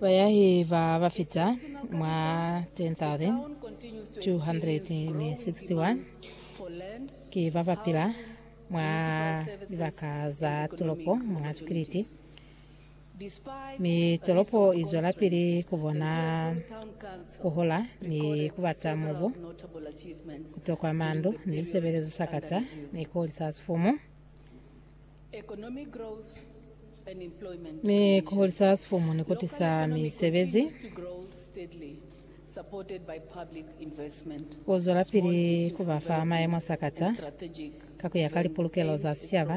Bayahi ba ba fita mwa 10,261 ki ba ba pila mwa libaka za tolopo mwa Sikiliti, mi tolopo i zwelapili ku bona ku hola ni ku bata mubu, ku tokwa mandu ni lisebelezo sakata ni koli sa sifumu. Mi ku hulisa ha sifumu ni ku tisa misebezi. Ku zwelapili ku ba fa mayemo a sakata ka ku ya ka lipulukelo za sicaba,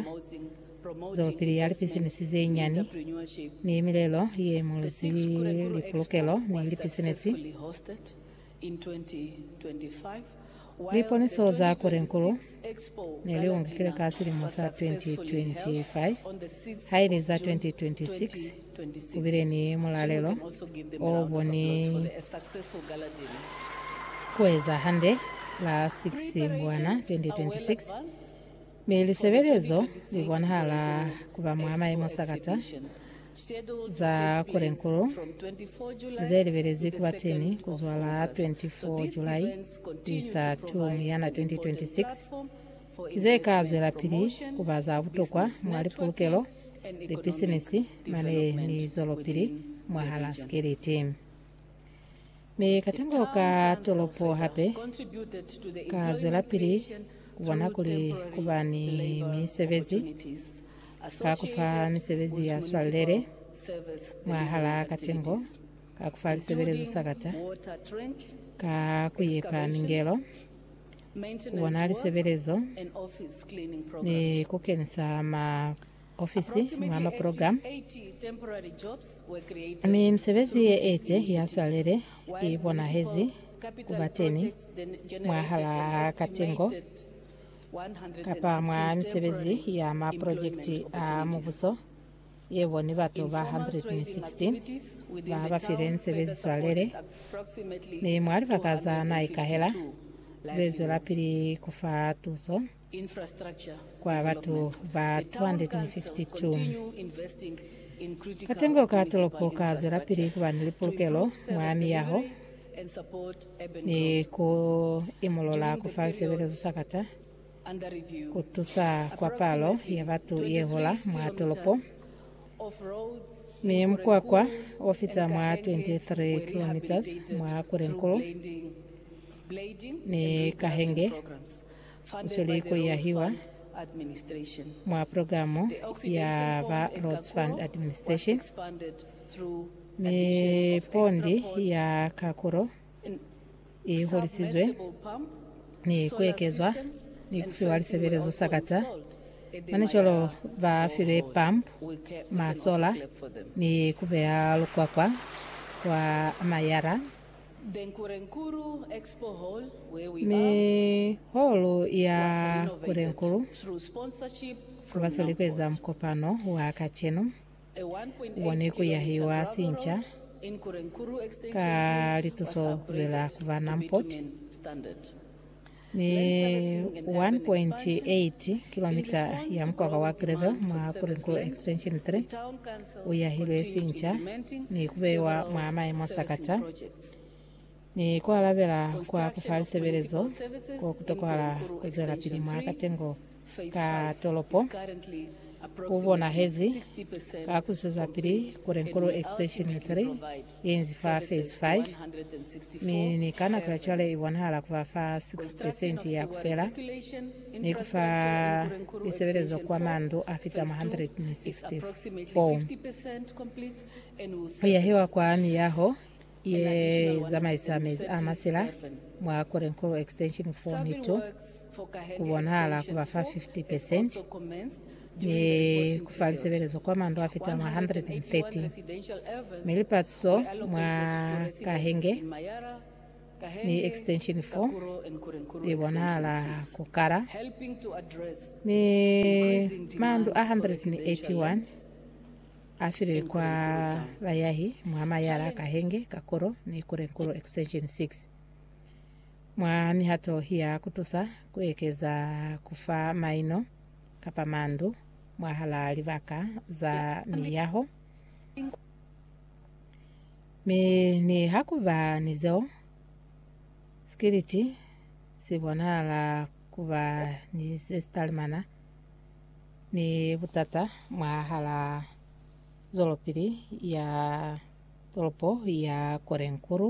zwelopili ya lipisinisi ze nyani, ni milelo ye imulizi lipulukelo ni lipisinisi Liponiso za Korenkulu ne li ungikile ka silimo sa 2025, haili za 2026 ku bile ni mulalelo o bo ni ku eza hande la 6 Mbwana 2026. Mi lisebelezo li bonahala ku ba mwa maimo sakata za kurenkulu ze libelezwi ku ba teni ku zwa la 24 Julai ku isa 2 Muyana 2026, ki ze ka zwelapili ku ba za butokwa mwa lipulukelo, lipisinisi mane ni zwelopili mwahal'a sikeliti. Mi katengo ka tolopo hape ka zwelapili kubona kuli kuba ni misebezi ka kufa misebezi ya swalele mwahala katengo, ka kufa lisebelezo sakata, ka kuyepa mingelo, kubona lisebelezo ni kukenisa ma. ofisi mwa maprogramu, mi misebezi ye ete ya swalele i bonahezi ku ba teni mwahalaa katengo kapa mwa misebezi ya maprojekiti a Mubuso ye boni batu ba 116 ba ba filwe misebezi swalele ni mwa libaka za na ikahela ze zwelapili ku fa tuso. kwa batu ba 252. Katengo ka tolopo ka zwelapili ku ba ni lipulukelo mwa miyaho ni ku imolola ku fa lisebelezo sakata ku tusa kwa palo ya batu ye hola mwa tolopo, mi mukwakwa o fita mwa 23 kilometres mwa Kwerenkulu ni Kahenge. Kusweli ku yahiwa mwa programo ya ba Rhodes Fund Administration, mi pondi ya kakulo i holisizwe ni kuekezwa ni kufiwa lisebelezo sakata. Manicolo ba filwe pump, masola ni kubeya lukwakwa kwa mayara. Mi holo ya Kurenkuru basweli kueza mukopano wa kacenu one kuyahiwa sinca ka lituso zwela kuba non-pot. ni 1.8 kilomita ya mukwaka wa Greville mwa Purinkulu Extension 3 uyahilwe sinca ni kubeiwa mwa maemo sakata ni kualabela kwa kufa lisebelezo ko kutokohala kuzwelapili mwa katengo ka tolopo kubonahezi ka kuzwezapili Purinkulu Extension 3 Inzi fa fezi 5, mi ni ka nako ya cwale i bonahala ku ba fa 6 pesenti ya ku fela, ni ku fa lisebelezo kwa mandu a fita 164 ku yahiwa kwa miyaho ye zamaisa mezi a masila mwa Korenkoro Extension 4 ni 2. ku bonahala ku ba fa 50 percent ni ku fa lisebelezo kwa mandu a fita mwa 113, mi lipatiso mwa Kahenge ni Extension 4 li bonahala ku kala, mi mandu a 181 a filwe kwa bayahi mwa mayara a Kahenge, Kakuro ni Kurenkuro Extension 6. Mwa mihato ya ku tusa ku ekeza ku fa maino kapa mandu mwahalaa libaka za miyaho, mi niha ku ba ni zeo, sikiliti si bonahala ku ba ni se si talimana ni butata mwahalaa zwelopili ya tolopo ya Korenkuru.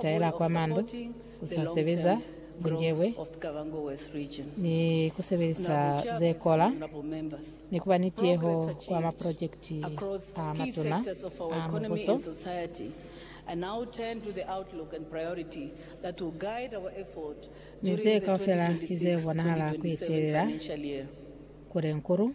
taela kwa mandu, ku sa sebeza bunjebwe, ni ku sebelisa ze kola, ni ku ba ni tieho kwa maprojekiti a matuna a Mubuso. Mi ze kaufela ki ze bonahala ku etelela Kulenkulu.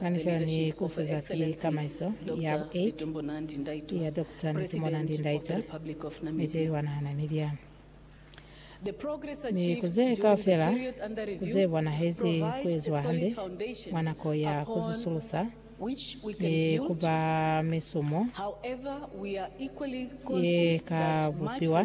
Kanisela ni kusuza ki tamaiso ya bu 8 ya Doctor Netumona Ndi-Ndaitwah mi te iwanahana milya mi ku ze kaufela ku ze bonahezi ku eziwa hande mwa nako ya ku zusulusa ni ku ba misumo ye ka bupiwa.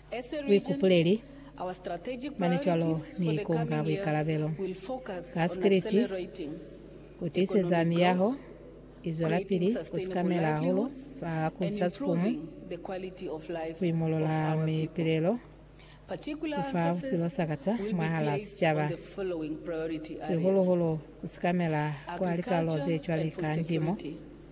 buikupuleli, mane cwalo ni ikunga buikalabelo ka sikiliti ku tiiseza miyaho i zwelapili ku sikamela hahulu fa ku sa sifumu, ku imolola mipilelo, ku fa bupilo sakata mwahal'a sicaba, sihulu-hulu ku sikamela kwa likalo ze cwale ka ndimo.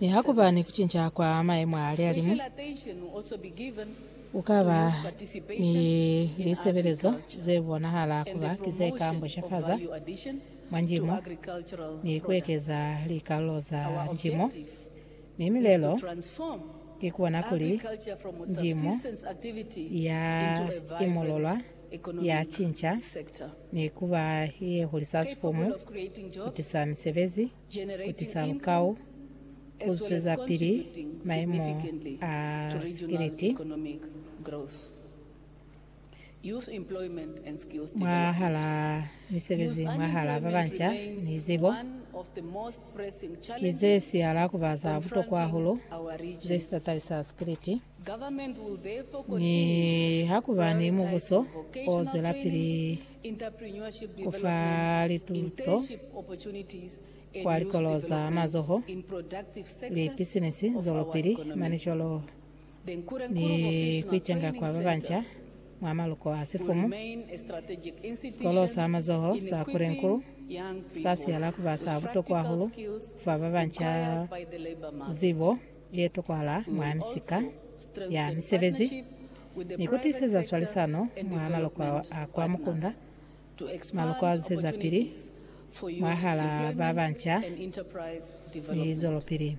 Niha ku ba ni ku cinca kwa mayemo a lihalimu, ku ka ba ni lisebelezo ze bonahala ku ba ki ze ka mbushafaza mwa njimo ni ku ekeza likalulo za njimo. Mi milelo ki ku bona kuli njimo ya imululwa, ya cinca, ni ku ba ye hulisa sifumu, ku tisa misebezi, ku tisa lukau, ku zwezapili maimo a sikiliti mwahalaa misebezi mwahalaa babanca, ni zibo, ki ze sihala kuba za butokwa hahulu ze sitatali sa sikiliti. Nihakuba ni mubuso o zwelapili, ku fa lituto kwa likolo za mazoho, lipisinisi zwelopili, manicolo ni ku itenga kwa ba banca mwa maluko a sifumu. Sikolo sa mazoho sa Kurenkul si ka siyala ku ba sa butokwa hahulu ku fa ba banca zibo ye tokwahala mwa misika ya misebezi. ni ku tiseza swalisano mwa maloko a kwa mukunda, maloko a zusezapili mwahalaa ba banca ni zwelopili.